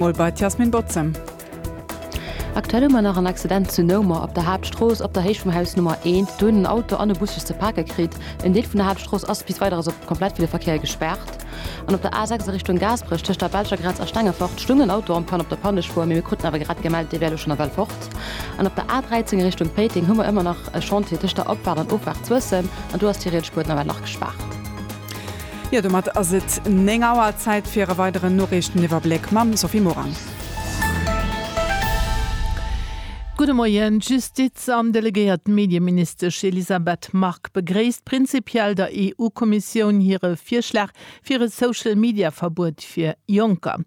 Mol bei d'Yasmin Botzem. Aktuell hu mer nach en Accident zu Noumer op der Haaptstrooss, op der Héicht vum Haus Nummer 1. Do hunn en Auto an e Bus sech ze pake kritt. En Deel vun der Haaptstrooss ass bis Weideres op komplett fir de Verkéier gespaart. An op der A6 a Richtung Gaasperech tëscht der belscher Grenz a Stengefort stung en Auto am Panne op der Pannespur, mee mir kruten awer grad gemellt, dee wär elo schonn ewell fort. An op der A13 a Richtung Péiteng hu mer ëmmer nach e Chantier tëscht der Opfaart an Offaart Suessem an do ass d'Hyrietspuer nawell nach gespaart. Jo, domat ass et 9 Auer. Zäit fir e weideren Noriichteniwwerbléck mam Sophie Morang. Gudde Moien. D'Justiz an delegéiert Medieministesch Elisabeth Margue begréisst prinzipiell der EU-Kommissioun hire Virschlag fir e Social-Media-Verbuet fir Jonker.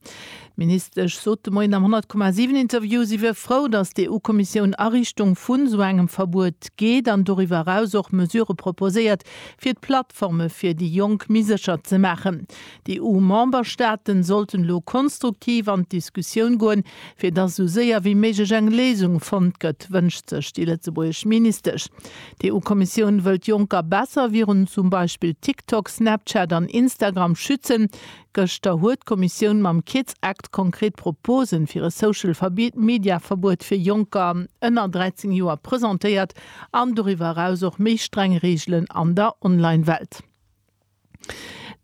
D'Ministesch sot de Moien am 100,7 Interview, si wier frou, datt d'EU-Kommissioun a Richtung vu sou engem Verbuet geet an doriwwer eraus och Mesurë proposéiert, fir d'Plattforme fir déi Jonk méi sécher ze maachen. D'EU-Memberstaaten sollten elo konstruktiv an d'Diskussioun goen, fir datt esou séier wéi méiglech eng Léisung fonnt gëtt, wënscht sech déi lëtzebuergesch Ministesch. D'EU-Kommissioun wëll d'Jonker besser virun zum Beispill TikTok, Snapchat an Instagram schützen. Gëschter huet d'Kommissioun mam Kids Act konkret Proposen fir e Social Media Verbuet fir Jonker ënner 13 Joer presentéiert an doriwwer eraus och méi streng Reegelen an der Online Welt.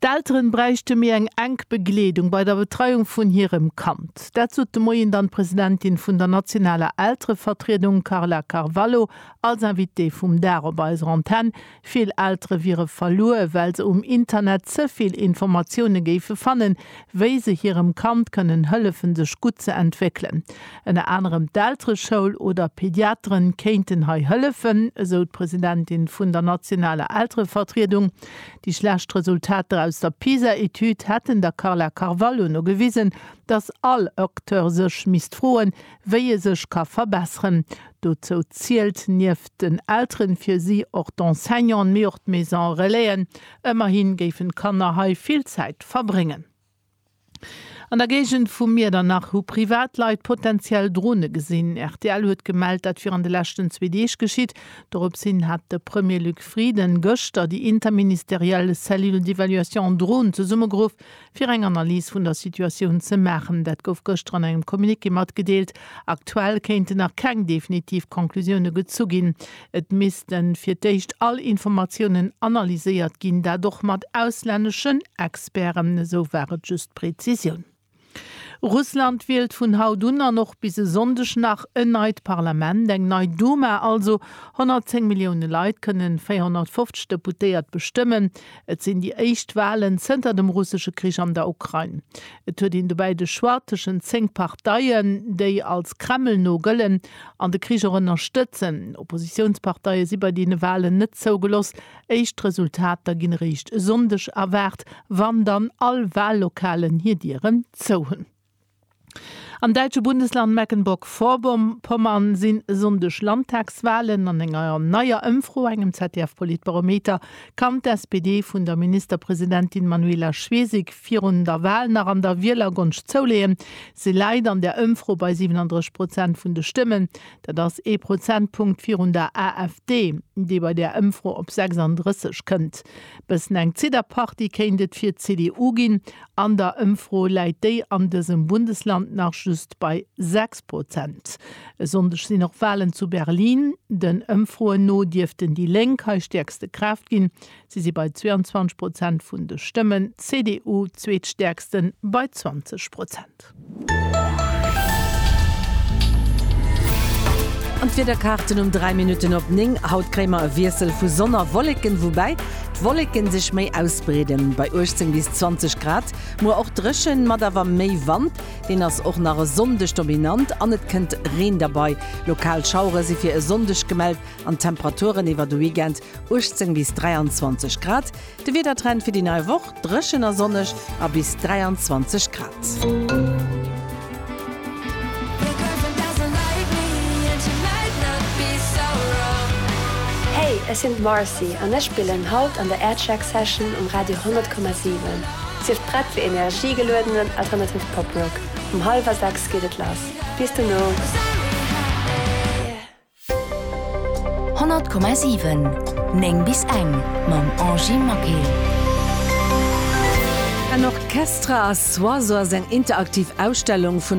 D'Elteren bräichte méi eng enk Begleedung bei der Betreiung vun hirem Kand. Dat sot de Moien dann d'Presidentin vun der nationaler Elterevertriedung Carla Carvalho als Invitée vum Dag op eiser Antenne. Vill Eltere wiere verluer, well se um Internet ze vill Informatioune géife fannen, wéi se hirem Kand kënnen hëllefen, sech gutt ze entwéckelen. Ënner anerem d'Eltereschoul oder Pediateren kéinten hei hëllefen, esou d'Presidentin vun der nationaler Elterevertriedung. Déi schlecht Resultater aus der PISA-Etüd hätten der Carla Carvalho no gewisen, datt all Acteur sech misst froen, wéi e sech ka verbesseren. Dozou zielt nieft den Elteren fir si och d'Enseignanten, mee och d'Maison Relaisen. Ëmmerhi géifen d'Kanner hei vill Zäit verbréngen. An der Géigend vu Miedernach hu Privatleit potenziell Drone gesinn. Rtl huet gemellt, dat wier an de leschten zwee Deeg geschitt. Dorops hin hat de Premier Luc Frieden gëschter déi interministeriell Cellule d'évaluation Drone zesummegeruff. fir eng Analys vun der Situatioun ze maachen. Dat gouf gëschter an engem Communiqué matgedeelt. Aktuell kéinten nach keng definitiv Conclusioune gezu ginn. Et misste fir d'éischt all Informatiounen analyséiert ginn, dat och mat auslänneschen Experten, esou war et just d'Prezisioun. Russland wielt vun haut un an och bis e Sonndeg nach en neit Parlament, eng nei Duma also. 110 Millioune Leit kënnen 450 Deputéiert bestëmmen. Et sinn déi éischt Walen zënter dem russesche Krich an der Ukrain. Et huet een dobäi de Choix tëschent zéng Parteien, déi als Kreml no gëllen an de Krich och ënnerstëtzen. Oppositiounsparteie si bei deene Walen net zougeloss. Éischt Resultater ginn eréischt e Sonndeg erwaart, wann dann all Wallokalen hir Dieren zou hunn. Am däitsche Bundesland Mecklenburg-Vorpommern sinn e Sonndeg Landtagswalen. An enger neier Ëmfro, engem ZDF-Politbarometer, kann d'SPD vun der Ministerpresidentin Manuela Schwesig virun der Wal nach an der Wielergonscht zouleeën. Si läit an där Ëmfro bei 37 Prozent vun de Stëmmen. Dat ass ee Prozentpunkt virun der AfD, déi bei där Ëmfro op 36 kënnt. Bëssen eng Zidderparty kéint et fir d'CDU ginn. An der Ëmfro läit déi an dësem Bundesland nach just bei 6 Prozent. E Sonndeg sinn och Walen zu Berlin. Den Ëmfroen no dierften déi Lénk hei stäerkste Kraaft ginn. Si si bei 22 Prozent vun de Stëmmen, d'CDU zweetstäerksten bei 20 Prozent. An d'Wiederkaarten um 3 Minutten op 9, Haut kréie mer e Wiessel vu Sonn a Wolleken, woubäi d'Wolleke sech méi ausbreeden, bei 18 bis 20 Grad. Muer och dréchen, mat awer méi Wand, deen ass och nach e Sonndeg dominant an et kënnt Reen derbei. Lokal Schauere si fir e Sonndeg gemellt an d'Temperaturen iwwer de Weekend, 18 bis 23 Grad. De Wiedertrend fir déi nei Woch, Dréchen a sonneg a bis 23 Grad. Hey, ech sinn d'Marcy an ech spillen haut an der Aircheck Session um Radio 100,7. Sief prett fir energiegeluedenen alternative Pop Rock. Um hallwer 6 geet et lass. Bis dono! 100,7 9 bis eng mam Angie Maquet. En Orchestre à soi, sou ass eng interaktiv Ausstellung vun der.